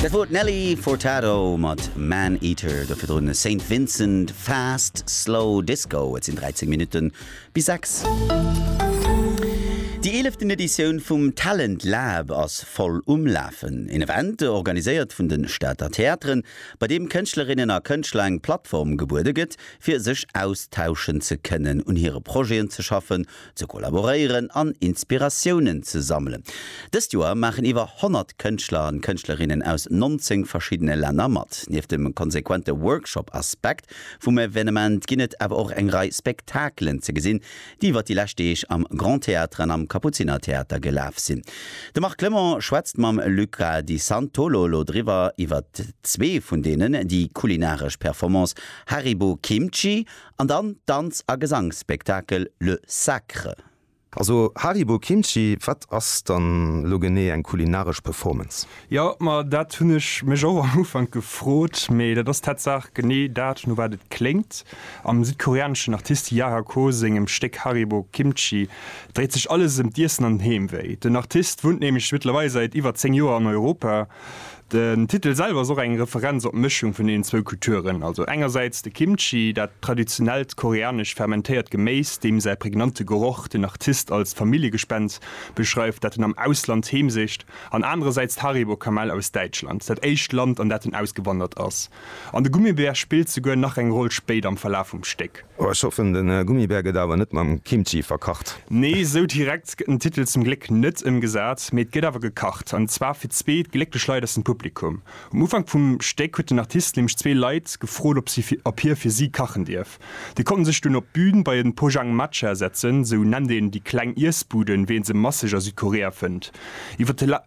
Dat wor d'Nelly Furtado mat Man Eater, dofir drun Saint Vincent Fast Slow Disco. Et sinn 13 Minutte bis 6. Déi eeleften Editioun vum Talent Lab ass voll um Lafen. Een Event organiséiert vun de Stater Theateren, bei deem Kënschtlerinnen a Kënschtler eng Plattform gebuede gëtt, fir sech austauschen ze kënnen, un hire Projeten ze schaffen ze kollaboréieren an Inspiratiounen ze sammelen. Dëst Joer maachen iwwer 100 Kënschtler an Kënschtlerinnen aus 19 verschiddene Länner mat. Nieft dem konsequente Workshop-Aspekt vum Evenement ginn et awer och eng Rei Spektakelen ze gesinn, déi iwwer déi lescht Deeg am Grand Théâtre an am Kapuzinertheater gelaf sinn. De Marc Clement schwätzt mam Luca Di Santolo lo driwwer iwwert zwee vun deenen, déi kulinaresch Performance Haribo Kimchi An dann d'Danz a Gesangsspektakel Le Sacre. Also Haribo Kimchi, wat ass dann elo genee eng kulinaresch Performance? Jo, ma dat hunn ech mech och am Ufank gefrot, mee dat ass tatsaach genee dat, no wat et kléngt. Am südkoreaneschen Artist Yara Ko sengem Stéck Haribo Kimchi dréit sech alles ëm d'Iessen an den Heemwéi. Den Artist wunnt nämlech mëttlerweil säit iwwer 10 Joer an Europa. Den Titel selwer ass och eng Referenz op d'Mëschung vun deenen zwou Kulturen, also engersäits de Kimchi, dat traditionellt koreanescht fermentéiert Geméis, deem säi prägnante Geroch den Artist als Familljegespenst beschreift, dat en am Ausland heemsicht, an anerersäits d'Haribo-Kamell aus Däitschland, dat éischt Land, an dat en ausgewandert ass. an de Gummibär spillt souguer nach eng Roll spéit am Verlaf vum Stéck. Oh, ech hoffen, de Gummibär gëtt awer net mam Kimchi verkacht. Nee, esou direkt gëtt den Titel zum Gléck net ëmgesat, mee et gëtt awer gekacht, an zwar fir zwee glécklech Leit aus dem Publikum. Um Ufank vum Stéck huet den Artist nämlech zwee Leit gefrot, ob si, ob hie fir si kachen dierf. Déi konnten sech dunn op d'Bün bei en Pojang Matcha setzen, esou nennt een déi kleng Iessbuden, wéi een se masseg a Südkorea fënnt. Iwwer de.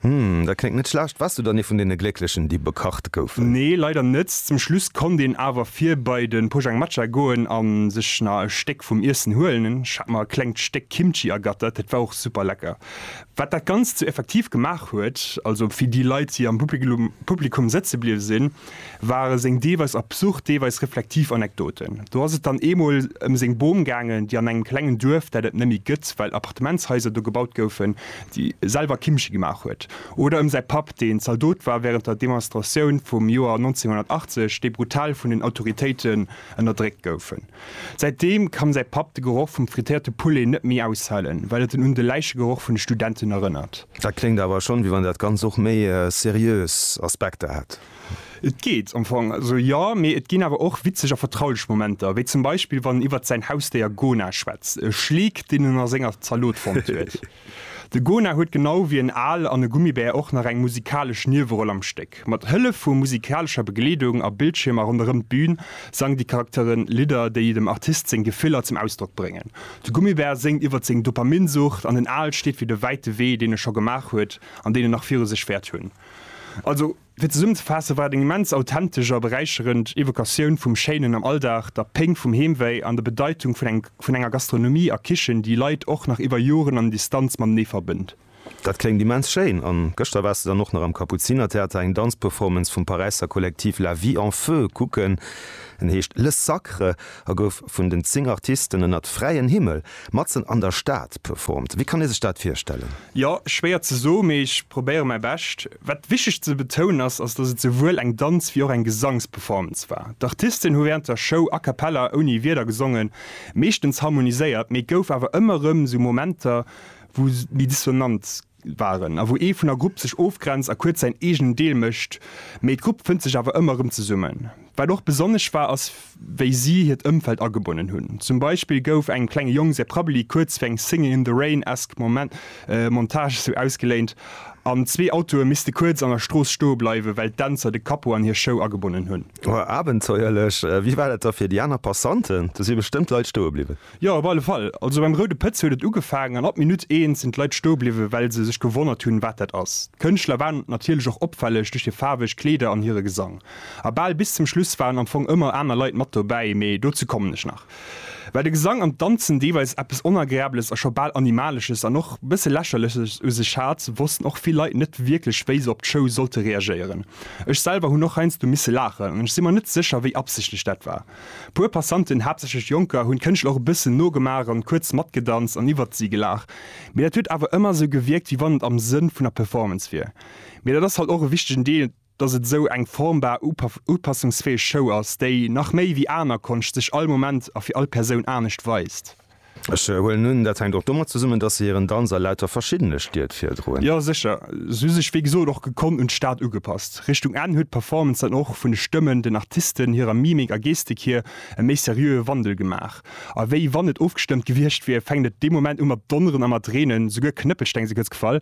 Hm, dat kléngt net schlecht. Waars du dann ee vun deene Glécklechen, déi bekacht goufen? Nee, leider net. Zum Schluss konnt een awer vir bei de Pojang Matcha goen a sech na e Stéck vum Iessen huelen. Ech hat mer e klengt Stéck Kimchi ergattert, dat war och super lecker. Wat dat Ganzt sou effektiv gemaach huet, also wéi déi Leit, déi am Publikum sëtze bliwwe sinn, ware seng deelweis absurd, deelweis reflektiv Anekdoten. Do ass et dann eemol ëm seng Bom gaangen, déi an engem klengen Duerf, dat et net méi gëtt, well Appartementshaiser do gebaut goufen, déi selwer Kimmche gemaach huet. Oder ëm säi Papp, deen Zaldot war wärend der Demonstratioun vum Joer 1980, déi brutal vun den Autoritéiten ënnerdréckt goufen. Säitdeem kann säi Papp de Geroch vum frittéierte Poulet net méi aushalen, well et en un de Läichegeroch vun de Studenten erënnert. Dat kléngt awer schonn, wéi wann dat Ganzt och méi seriös Aspekter hätt. Et geet am Fong esou, jo. Mee et ginn awer och witzeg a vertraulech Momenter, wéi zum Beispill, wann en iwwert säin Hausdéier Gona schwätzt, e Schleek, deen en a senger Zalot fonnt huet. De Gona huet genau wéi en Al an e Gummibär och nach eng musikalesch Nieweroll am Stéck. Musek. Mat Hëllef vu musikalescher Begleedung a Bildschiermer ronderëm d'Bün sangen déi Charaktere Lidder, déi dem Artist seng Gefiller zum Ausdrock bréngen. De Gummibär séngt iwwer seng Dopaminsucht an den Al steet fir de wäite Wee, deen e scho gemaach huet an deen e nach viru sech wäert hunn. Also, fir zesummenzefaassen, war et eng immens authentesch a beräicherend Evokatioun vum Schéinen am Alldag, der Péng vum Heemwéi an der Bedeitung vun enger Gastronomie a Kichen, déi Leit och nach iwwer Joren an Distanz matenee verbënnt. Dat kléngt immens schéin! An gëschter waars de dann och nach am Kapuzinertheater eng Danzperformance vum Paräisser Kollektiv La Vie en Feu kucken. En heescht Le Sacre a gouf vun den 10 Artisten ënnert fräien Himmel, matzen an der Stad, performt. Wéi kann ee sech dat virstellen? Jo, schwéier ze soen, mee ech probéiere mäi Bescht. Wat wichteg ze betounen ass, ass datt et souwuel eng Danz wéi och eng Gesangsperformance war. D'Artisten hu während der Show a cappella, ouni Wierder, gesongen, meeschtens harmoniséiert, mee et gouf awer ëmmer erëm sou Momenter wou méi dissonant waren a wou ee vun der Grupp sech ofgrenzt a kuerz säin eegenen Deel mécht, mee d'Grupp fënnt sech awer ëmmer erëm zesummen. Wat och besonnesch war ass wéi si hiert Ëmfeld agebonnen hunn. Zum Beispill gouf engem klenge Jong säi Prabbeli kuerz fir eng Singing in the Rain-esque Montage esou ausgeléint an zwee Autoe misste kuerz an der Strooss stoe bleiwen, well d'Dänzer de Capot an hir Show agebonnen hunn. Abenteuerlech! Wéi war dat da fir déi aner Passanten? Do si bestëmmt Leit stoe bliwwen. Jo, op alle Fall. Also beim Roude Pëtz huet et ugefaangen an ab Minutt eent sinn d'Leit stoe bliwwen, well se sech gewonnert hunn, wat dat ass. D'Kënschtler waren natierlech och opfälleg duerch hir faarweg Kleeder an hire Gesang. A bal bis zum Schluss waren am Fong ëmmer aner Leit mat dobäi, mee dozou kommen ech nach. Well de Gesang an d'Danzen deelweis eppes Onagreables a scho bal Animalesches an och bësse Lächerleches u sech hat, wossten och vill Leit net wierklech, wéi se op d'Show sollte reagéieren. Ech selwer hunn och heiansdo misse laachen an ech si mer net sécher, wéi absichtlech dat war. Puer Passanten, haaptsächlech Jonker, hunn d'Kënschtler och e bëssen nogemaach an kuerz matgedanzt an iwwert si gelaach. Mee dat huet awer ëmmer esou gewierkt, wéi wann et am Sënn vun der Performance wier. Mee dat ass halt och e wichtegen Deel, dass et esou eng formbar, upassungsfäeg Show ass, déi, nach méi wéi aner Konscht, sech all Moment a fir all Persoun anescht weist. Ech huelen un, dat hänkt och domat zesummen, datt se hiren Danz a lauter verschiddene Stied virdroen. Jo sécher, se hu sech wéi gesot och gekonnt un d'Stad ugepasst. Richtung Enn huet d'Performance dann och vun de Stëmmen, den Artisten, hirer Mimik a Gestik hier e méi seriöe Wandel gemaach. A wéi wann et ofgestëmmt gewiescht wier, fänkt et dee Moment u mat donneren a mat reenen, souguer Knëppelsteng si kuerz gefall,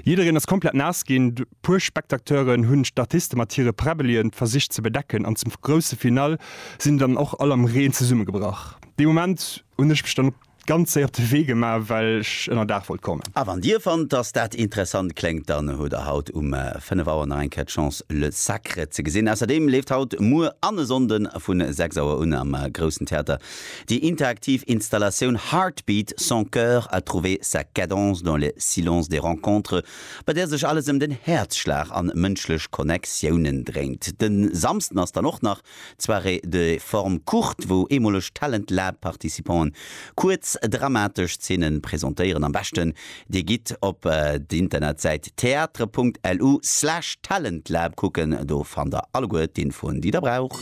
jiddereen ass komplett naass ginn. Puer Spectateuren hunn d'Artiste mat hire Präbbelien versicht ze bedecken an zum grousse Finale sinn dann och all am Reen zesummegebrach. Dee Moment hunn ech mech dann ganz séier op de Wee gemaach well ech ënner Daach wollt kommen. A wann dir fannt dass dat interessant kléngt, dann hutt der haut um 5 Auer nach eng Kéier d'Chance Le Sacre ze gesinn. Ausserdeem leeft haut, muer an e Sonnde vu 6 Auer un am Groussen Theater déi interaktiv Installatioun Heartbeat, son cœur a trouver sa cadence dans les silences des rencontres bei där sech alles ëm den Häerzschlag an mënschlech Connectiounen dréint. Den Samsden ass dann och nach d'Soirée de forme courte, wou eemoleg Talent Lab Participanten kuerz dramatesch Zeenen presentéieren. Am beschten dir gitt op d'Internetsäit theatre.lu slash talentlab kucken, do fannt der alleguer d'Infoen déi der braucht.